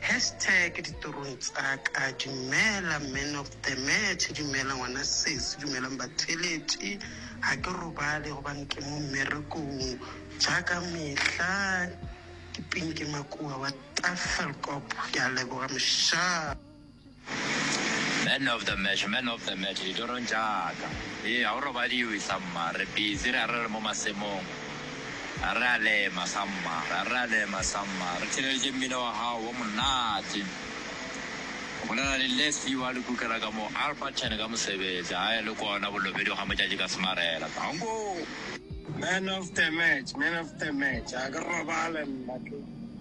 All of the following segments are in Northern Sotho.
Hashtag ditorong tsa ka Dumela man of the match Dumela ngwana sesi Dumelang batheletši Ga ke robale gobane ke mo mmerekong Ja ka mehla Ke Pinky Makuwa wa Tafelkop Ke a leboga mošaa. Man of the match, man of the match ditorong tša ka. Hee, ga go robadiwe sa mma, re busy, ra re re mo masemong. A re a lema sa mma, ra re re a lema sa mma. Re theeleditše mmino wa gago wo monate. O bolela le Les Few a le kukela ka mo Alberton ka mosebetsi, a e le kona bolobedi ga motšatši ka semarela. Tanko! Man of the match, man of the match, ga ke robale nna ke.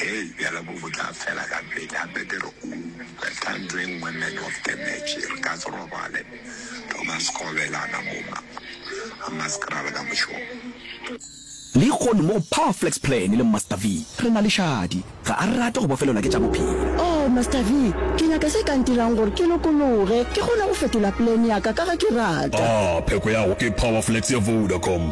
Hei, bjalo bo bo tla fela ka pele. Gape ke re, O betha ntho e nngwe man of the match. Re ka se robale. Thoma sekgobelana mo, mma. A maskrala ka mošomo. Lehono mo go Pa Flaxplan le Mmaster V, re na le šadi. Ga a rate go bofelelwa ke tša bophelo. Oh, Mmaster V, ke nyaka se ka ntirang gore ke lokologe, ke kgone go fetola plan ya ka, ka ge ke rata. Ah, pheko ya go ke Power Flex ya Vodacom.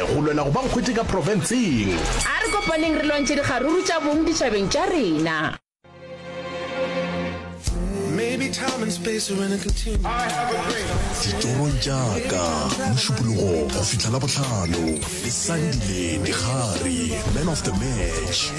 Go lwela go ba nkgwete ka profenseng. A re kopaneng re lwantšhe dikgaruru tša bong ditšhabeng tša rena. Ditšorong tša ka, Mošupologo go fihla Labohlano, le Sandile Dikgari, Man of the Match.